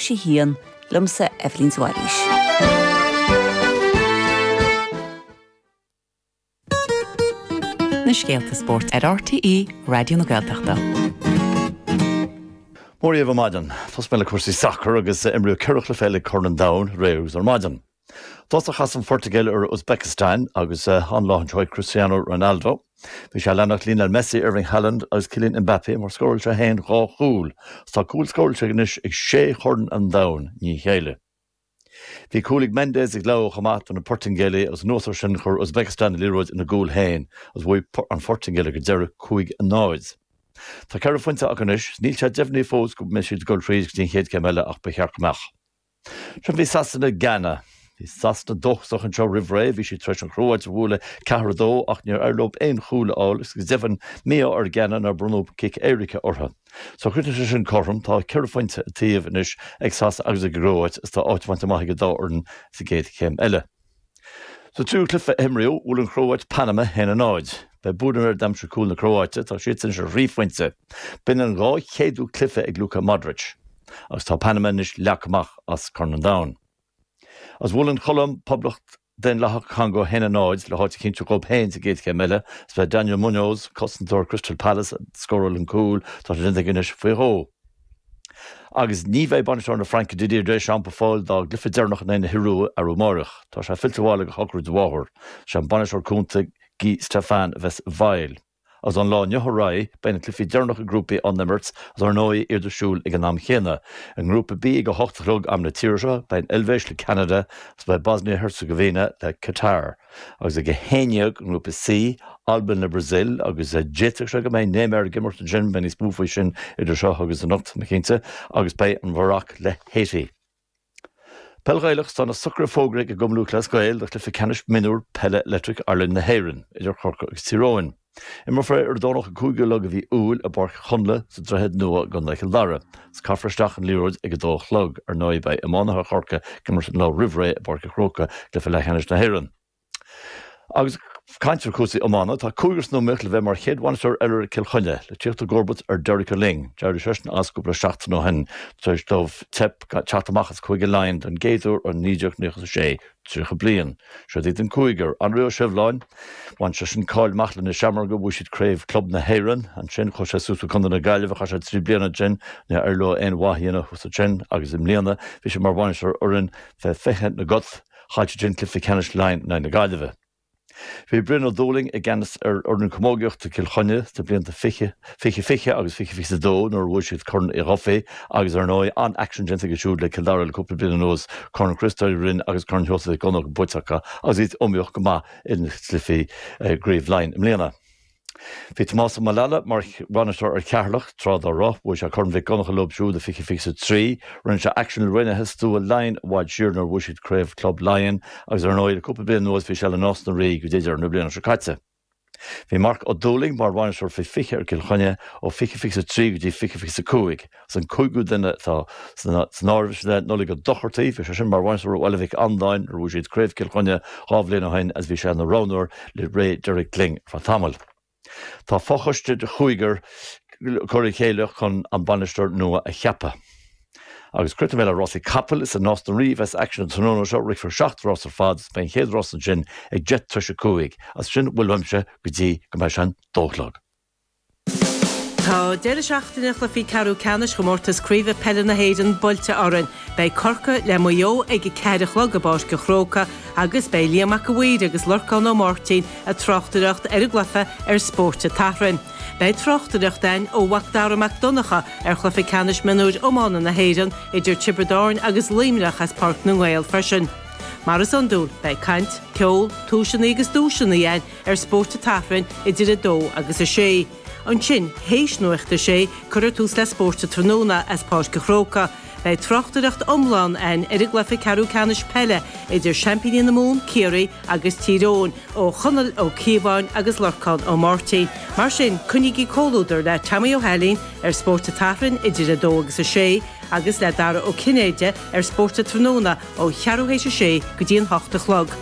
sé híon liomsa Eibhlín de Bhailís. na scéalta spóirt ar RTÉ Raidió na Gaeltachta. Mora dhaoibh ar maidin. Tosóidh mé le cúrsaí sacair agus imríodh cheithre chluiche eile i gCorn an Domhain aréir is ar maidin. Is chas an Phortaingéil ar Uzbekistan agus an-lá anseo ag Cristiano Ronaldo. Bhí sé ag leanacht Lionel Messi, Erling Haaland agus Kylian Mbappé mar scóráil sé féin dhá chúl agus tá cúl scóráilte aige anois ag sé Chorn an Domhain i ndiaidh a chéile. Bhí cúl ag Mendes ag Leão chomh maith do na Portaingéalaigh agus anuas ar sin chuir Uzbekistan an liathróid ina gcúl féin agus bhuaigh an Phortaingéil ag an deireadh cúig a náid. Tá ceithre phointe acu anois. Níl sé deimhnithe fós go mbeidh siad ag dul thríd go dtí an chéad céim eile ach ba cheart go mbeadh. Ansin bhí Sasana, Gána. Bhí Sasana dóchasach anseo roimh ré, bhí siad tar éis an Chróáit a bhualadh ceathair a dó ach níor éirigh leo aon chúl a fháil agus go deimhin mí-ádh ar Ghána nár bronnadh cic éirice orthu. So chríochnaigh sé sin cothrom, tá ceithre phointe an taobh anois ag Sasana agus ag an gCróáit agus tá áit bainte amach ag an dá fhoireann sa gcéad chéim eile. Sa triú cluiche a himríodh, bhuail an Chróáit Panama 1, 0. Ba é Budimir a d'aimsigh cúl na Cróáite, tá siadsan anois ar thrí phointe. B'in an dhá chéadú cluiche ag Luka Modric. Agus tá Panama anois leagtha amach as Corn an Domhain. Agus bhuail an Cholóim Poblacht Daonlathach Congó 1, 0, le háit a chinntiú dhóib féin sa gcéad chéim eile. Is ba é Daniel Muñoz, cosantóir Crystal Palace, a scóráil an cúl, tá sé déanta aige anois faoi dhó. Agus ní bheidh bainisteoir na Fraince Didier Deschamps ar fáil dá gcluiche deireanach in aghaidh na hIorua arú amáireach. Tá sé fillte abhaile do shochraid a mháthar. Sé an bainisteoir cúnta Guy Stéphan a bheas i bhfeighil. Agus ón lá inniu ar aghaidh beidh na cluichí deireanach i ngrúpaí á n-imirt agus ar ndóigh iad ar siúl ag an am chéanna. I ngrúpa B ag a hocht a chlog, am na tíre seo, beidh an Eilvéis le Ceanada agus beidh Bosnia-Herzegovina le Catar. agus ag 11 i nGrúpa C, Albain le Brasaíl, agus d'fhéadfadh sé go mbeidh Neymar ag imirt ansin, beidh níos mó faoi sin idir seo agus anocht, sin cinnte, agus beidh an Mharoc le Haiti. Peil Ghaelach Tá na socruithe fógraithe ag Cumann Lúthchleas Gael do chluiche ceannais mionúr peile Electric Ireland na hÉireann idir Chorcaigh agus Tír Eoghain. Imreofar ar an Domhnach an 5ú lá de mhí Iúil i bPáirc Chonnla sa Droichead Nua i gContae Chill Dara. Is caithfear isteach an liathróid ag a dó a chlog. Ar ndóigh beidh iománaithe Chorcaigh ag imirt an lá roimh ré i bPáirc an Chrócaigh i gcluiche leathcheannais na hÉireann. Agus ag caint ar chúrsaí iomána, tá cúigear san iomaíocht le bheith mar chéad bhainisteoir eile ar Chill Chainnigh, le tíocht i gcomharbacht ar Derek Ó Luing. D'éirigh seisean as cúpla seachtain ó shin tar éis dóibh teip teacht amach as Cúige Laighean don gcéad uair ó 1996. 30 bliain. Siod iad an cúigear, Anraí Ó Sibhleáin, bhain seisean cáil amach leis na Seamróga, bhuaigh siad craobh club na hÉireann ansin, chuaigh sé suas go Contae na Gaillimhe, chaith sé trí bliana ansin, níor éirigh leo aon mhaith a dhéanamh thuas ansin agus i mbliana bhí sé mar bhainisteoir ar fhoireann faoi 20 na gCat, chaill siadsan cluiche ceannais Laighean in aghaidh na Gaillimhe. Bhí Brian Ó Dúlaing i gceannas ar fhoireann camógaíochta Cill Chainnigh sna blianta fiche, fiche fiche agus fiche fiche a dó nuair a bhuaigh siad Corn Uí Dhufaigh agus, ar ndóigh, an-aicsean déanta aige siúd le Cill Dara le cúpla bliain anuas, Corn Chriostóir Uí Rinn agus Corn Sheosaimh Mhic Dhonnacha buaite acu agus iad iomaíoch go maith ins na cluichí i gCraobh Laighean i mbliana. Bhí Tomás Ó Maolalaidh mar bhainisteoir ar Cheatharlach tráth dá raibh. Bhuaigh sé Corn Mhic Dhonnacha leo siúd i 2023. Rinne sé aicsean le Raonaithe Stua Laighean i bhfad siar nuair a bhuaigh siad Craobh Club Laighean agus ar ndóigh le cúpla bliain anuas bhí sé le Nás na Rí go dtí deireadh na bliana seo caite. Bhí Mark Ó Dúlaing mar bhainisteoir faoi 20 ar Chill Chainnigh ó 2023 go dtí 2025. Is an cúigiú duine atá san áireamh sin ná Nollaig Ó Dochartaigh, bhí sé sin mar bhainisteoir ar Bhaile Mhic Andáin nuair a bhuaigh siad Craobh Chill Chainnigh dhá bhliain ó shin agus bhí sé ina roghnóir le ré Derek Lyng ar feadh tamaill. Tá fochoiste de chúigear curtha le chéile chun an bainisteoir nua a cheapadh. Agus críochnóidh mé le rásaí capall, is i Nás na Rí a bheas aicsean an tráthnóna seo, rithfear seacht rás ar fad agus beidh an chéad rás ansin ag deich tar éis a cúig, is sin a bhfuil uaimse go dtí go mbeidh sé an dó a chlog. Tá deireadh seachtaine chluichí ceathrú ceannais Chomórtas Craoibhe Peile na hÉireann buailte orainn. Beidh Corcaigh le Maigh Eo ag a ceathair a chlog i bPáirc an Chrócaigh agus beidh Liam Mac a' Mhaoir agus Lorcán Ó Máirtín ag tráchtaireacht ar an gcluiche ar Spórt an tSathairn. Beidh tráchtaireacht a'ainn ó Mhac Dara Mac Donncha ar chluiche ceannais mionúir iomána na hÉireann idir Tiobraid Árainn agus Luimneach as Páirc na nGael freisin. Mar is iondúil, beidh caint, ceol, tomhaiseanna agus duaiseanna a'ainn ar Spórt an tSathairn idir 2 agus 6. Ansin, théis Nuacht a Sé, cuirfear tús le Spórt an Tráthnóna as Páirc an Chrócaigh. Beidh tráchtaireacht iomlán ann ar an gcluiche ceathrú ceannais peile idir seaimpíní na Mumhan, Ciarraí, agus Tír Eoghain, ó Chonall Ó Cíobháin agus Lorcán Ó Máirtín. Mar sin, coinnígí comhluadar le Tommy Ó hAilín ar Spórt an tSathairn idir 2 agus 6, agus le Dara Ó Cinnéide ar Spórt an Tráthnóna ó cheathrú théis a sé go dtí an hocht a chlog.